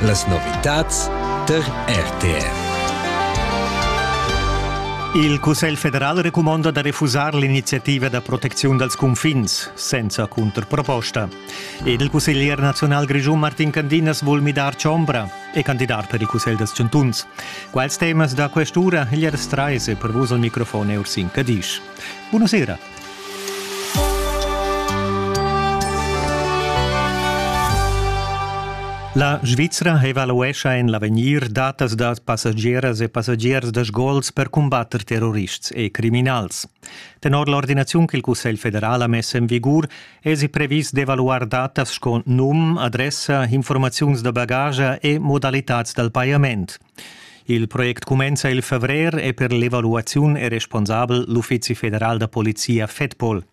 Las novitads tar RTR. Il Cussegl federal recumonda da refusar l'iniziativa da proteziun dals cunfins senza cunterproposta. Ed il cusseglier nazional grischun Martin Candinas vul midar chombra, è candidat per il Cussegl dels Chantuns. Quals temas da quest'ura gli restrai se per vos al microfon Ursin Cadisch. Buonasera. La Svizra evaluescha en l'avegnir datas da passagieras e passagiers da sgols per cumbatter terrorists e criminals. Tenor l'ordinaziun che il Cussegl federal ha mess en vigur èsi previs d'evaluar datas sco num, adressa, informaziuns da bagage e modalitads dal pajament. Il project cumenza il favrer e per l'evaluaziun è responsabel l'Uffizi federal da polizia FEDPOL.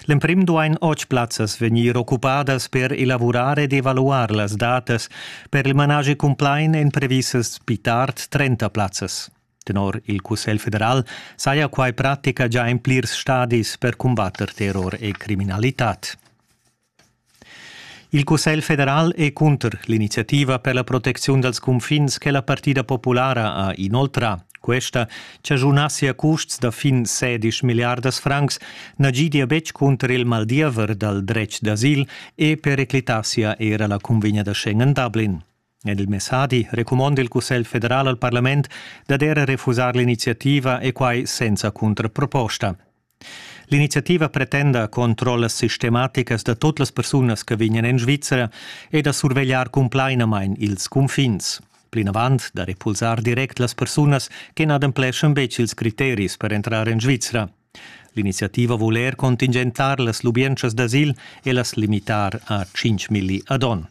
L'emprim duain otg plazzas vegnir occupadas per elavurar ed evaluar las datas per il managi cumplain èn previsas pli tard 30 plazzas. Tenor il Cussegl federal saja quai pratica già in plirs stadis per cumbatter terror e criminalitad. Il Cussegl federal è cunter l'iniziativa per la protecziun dals cunfins che la partida populara ha inoltrà. Questa chaschunassia custs da fin 16 milliardas francs na gidia betg cunter il maldiever dal dretg d'asil e periclitassia era la cunvegna da Schengen-Dublin. En il messadi recumonda il Cussegl federal al parlament dad era refusar l'iniziativa e quai senza cuntraproposta. L'iniziativa pretenda controllas sistematicas da tut las persunas che vegnan en Svizzera e da survegliar cumplainamain ils cunfins. Plinavant da repulsar direct las persunas che n'adempleschan betg ils criteris per entrar en Svizzera. L'iniziativa vul er contingentar las lubientschas d'asil e las limitar a 5 milli ad onn.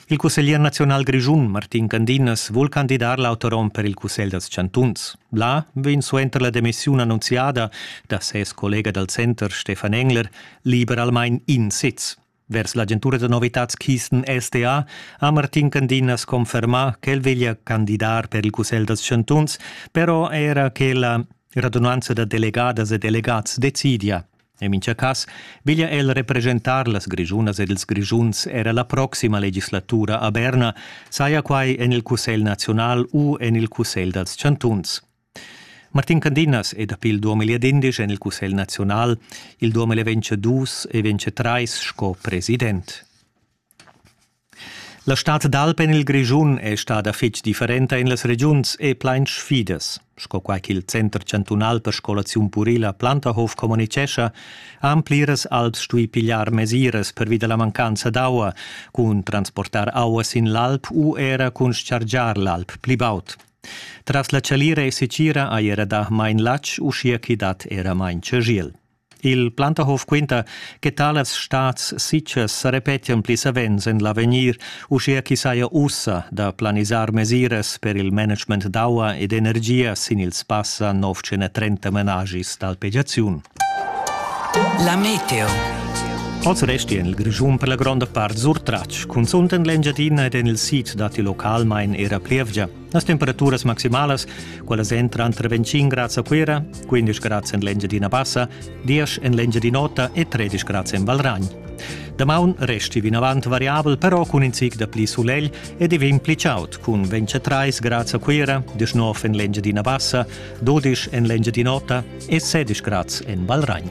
Il cusseglier naziunal grischun Martin Candinas vul candidar l'autorom per il cussegl dals chantuns. Là vegn suenter la demissiun annunziada da ses collega dal center Stefan Engler liberalmain in sez. Vers l'agentura da novitads Kisten SDA ha Martin Candinas confermà ch'el veglia candidar per il cussegl dals chantuns, però era che la radunanza da delegadas e delegats decidia. En mincha cass veglia el representar las Grischunas ed ils Grischuns era la proxima legislatura a Berna, saja quai en il Cussegl naziunal u en il Cussegl dals chantuns. Martin Candinas è dapi il 2011 en il Cussegl naziunal, il 2022 e 2023 sco president. La stad d'alp en il Grischun è stada fitg differenta en las regiuns e plain sfidas. Sco quai ch'il Center chantunal per scolaziun purila Plantahof communitgescha, han pliras alps stuì pigliar mesiras pervi da la mancanza d'aua, cun transportar aua sin l'alp u era cun chargiar l'alp pli baud. Tras la chalira e sitgira hai era dà main latg, uschia ch'i dat era main chagiel. Il Plantahof quinta che talas stats sitgas sa repetian pli savens en l'avegnir, uschia ch'i saja ussa da planisar mesiras per il management d'aua ed energia sin ils passa 930 menagis d'alpegiaziun. La meteo. Oz resti en il Grischun per la gronda part surtratg, cunzunt en l'Engiadina ed en il sid datti localmain era plievgia. Las temperaturas maximalas, quellas entran tra 25 grads a Cuira, 15 grads en l'Engiadina Bassa, 10 en l'Engiadin'Ota e 13 grads en Valragn. Damaun resti vinavant variabel, però cun in zic da pli sulegl e divin pli chaud, cun 23 grads a Cuira, 19 en l'Engiadina Bassa, 12 en l'Engiadin'Ota e 16 grads en Valragn.